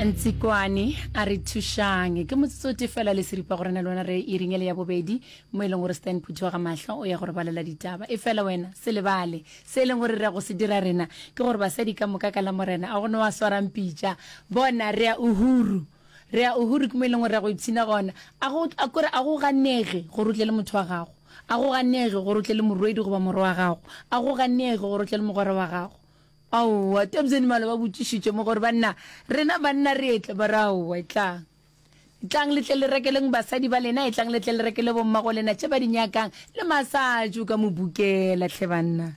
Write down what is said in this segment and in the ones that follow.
ntsikwane a re thušang ke motsotso te fela le seripa gore na le wena re e ringele ya bobedi mo e leng gore stan phuthoga mahlo o ya gore balela ditaba e fela wena se lebale se e leng gore re go se dira rena ke gore basadi ka moka ka la morena a gone wa swarang pitša bona re a uhuru re a uhuru ke mo e leng gore re go ipshina gona a go a kore a go ganege gore o tle le motho wa gago a go ganege gore o tle le morwedi goba morwa wa gago a go ganege gore o tle le mogwera wa gago Aowa, Tabs and Mala ba botšišitše mo gore, Banna, rena banna re etle. Ba re, Aowa, etlang. Etlang le tle le rekeleng basadi ba lena, etlang le tle le rekele bommago lena tše ba di nyakang, le massage o ka mo bukela, hle banna.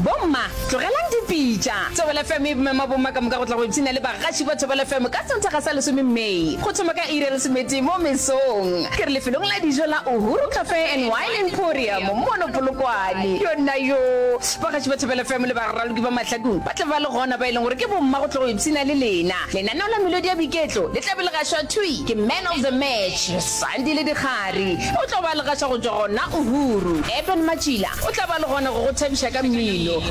Bomma, tlogelang dipitša. Thobela FM e mema bomma ka moka go tla go ipshina le bagaši ba Thobela FM ka Sontaga sa lesome May, go thoma ka iri ya lesometee mo mesong. Ke re lefelong la dijo la Uhuru Cafe and Wine Emporium mono Polokwane. Yona yoo! Bagatši ba Thobela FM le baraloki ba Mahlakong ba tla ba le gona ba e leng gore ke bomma go tlo go ipshina le lena. Lenaneo la melodi ya boiketlo le tla be le gašwa thwi ke Man of the Match, Sandile Dikgari. O tlo ba le gaša go tšwa gona Uhuru. Eben Matšila o tla ba le gona go go thabiša ka mmino.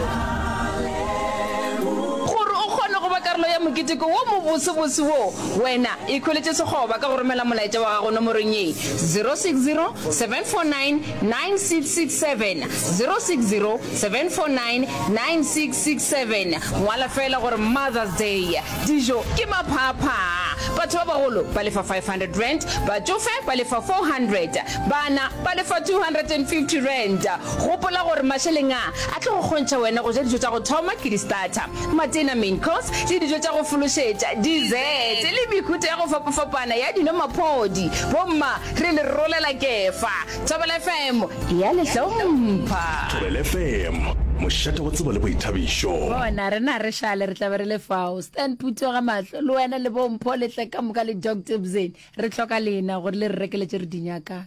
Gore o kgone go ba karolo ya moketeko wo mobosebose wo, wena ikhweletše sekgoba ka go romela molaetša wa gago nomorong ye, 060 749 9667 060 749 9667 Ngwala feela gore Mother's Day. Dijo ke maphaaphaa. Batho ba bagolo ba lefa R500, batšofe ba lefa R400, bana ba lefa R250. Gopola gore mašeleng a a tlo go kgontšha wena go ja dijo tša go thoma ke di-starter, matena, main course, le dijo tša go fološetša, dessert, le mehuta ya go fapafapana ya dino-maphodi. Bomma Re le rolela Kefa. Thobela FM e a le hlompha. Thobela FM, mošate wa tsebo le boithabišo. Bona, rena re šale, re tla be re le fao. Stan Phuthega mahlo, le wena le bo Mpho le tle ka moka le Doctor Bzeni. Re hloka lena gore le re rekeletše re di nyakang.